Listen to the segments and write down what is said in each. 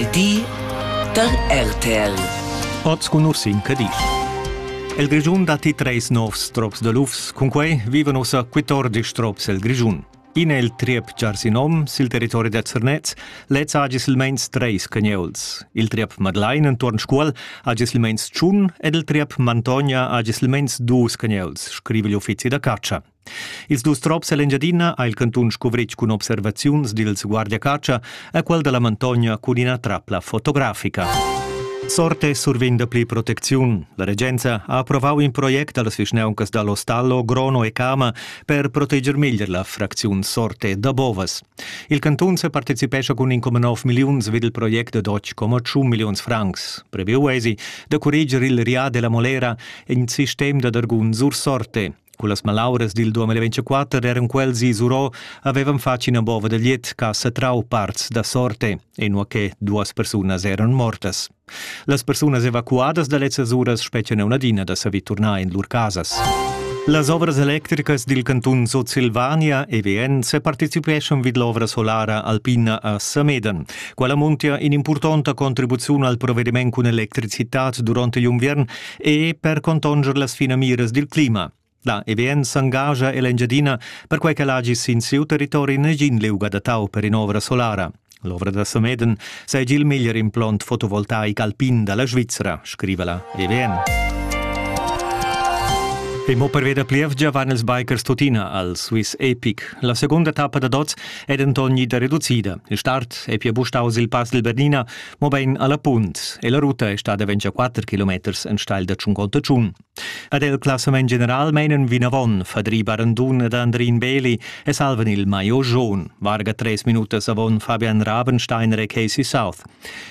il di da RTL. Oz cun Ursin Cadisch. El Grischun datti treis novs trops da lufs, cunquei vivan ussa 14 trops el Grischun. In è il triep Giarsinom sil territori da Zernez, lez ha silmeins treis cagneuls. Il triep Madlein entuorn Scuol ha silmeins tschun ed il triep Mantogna ha silmeins dus cagneuls, scriva l'uffizi da catscha. Ils dus trops ell'Engiadina ha il cantun scuvritg cun observaziuns dils guardiacatscha a quel dalla Mantogna cun ina trapla fotografica. Sorte survegn dapli protecziun. La regenza ha approvau in project dallas vischnauncas dall'Ostallo, Grono e Cama per proteger meglier la fracziun Sorte da Bovas. Il cantun separticipescha cun 1,9 milliuns vid il project ad 8,1 milliuns francs. Previu eisi da curreger il Ria della Molera, in sistem da dargun sur Sorte. Cullas malauras dil 2024 eran quels isurò havevan fatg ina bova da liet che ha satrau parts da sorte, inua che duas persunas eran mortas. Las persunas evacuadas da lezzas uras spetgan una adina da saver turnar in lur casas. Las ovras electricas dil cantun Sutsilvania EVN separticipeschan vid l'ovra solara alpina a Samedan. Quella muntia in'impurtonta contribuziun al provediment cun electricitat durante l'inviern e per contonger las finamiras dil clima. La EBN s'engascha ella Engiadina perquai ch'el hagi sin siu territori negin liug adattau per in'ovra solara. L'ovra da Sameden seigi il meglier implont fotovoltaic alpin dalla Svizra, scriva la EBN. E mo per veda plievgia van ils bikers tuttina al Swiss Epic. La segunda tappa da dots è denton ida reducida. Il start è pia bustaus il pass del Bernina mobein alla punt e la ruta è stada 24 kilometers enstagl da 50 tschun. Ad el classament general meinen vinavon Fadri Barandun ed Andrin Beli e salvan il Maio Jaun, varga tres minutas avon Fabian Rabensteiner e Casey South.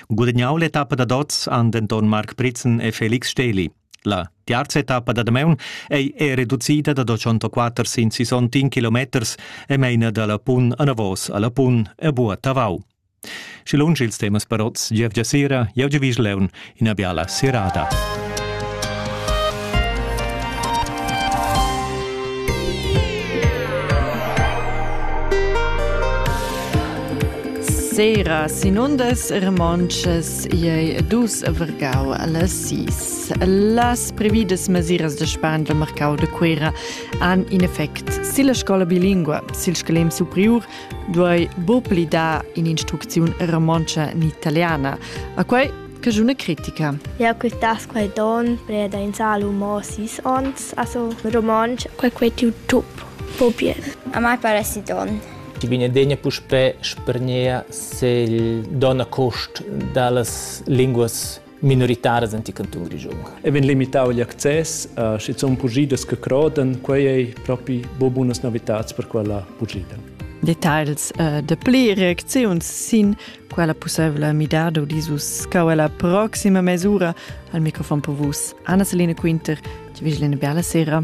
Gudagnau l'etappa da dots han denton Marc Pritzen e Felix Steli. La terza etappa da Damaun ei è reducida da 204 sin 61 kilometers e meina dalla Pun a Navos alla Pun e Bua Tavau. Schi lunsch ils temas parots gievgia sera, jau giavisch leun ina biala serada. Sera sinundas remonches ei dus vergau alla sis. Las previdas mesiras de span del mercau de Cuera han in effect silla scola bilingua, sil scalem superior duai bo pli dar in'instrucziun romontscha ni italiana. A quai che una critica. Ja que tas quai don preda in salu mo sis ons, also romansch, quai quai tiu tup, po bien. A mai pare si don. Ti Benedegna puspè spergnea se il don a cost da las linguas minoritaras anti canton grischun. E vegn limitau igl access a schizun pugidas che croden, quei ei propi bo bunas novitats per quella pugida. Details uh, de pli reacziuns sin quella possibla midada disus cauela proxima mesura al microfon per vus Anna Selina Quinter, ci vigilene bella sera.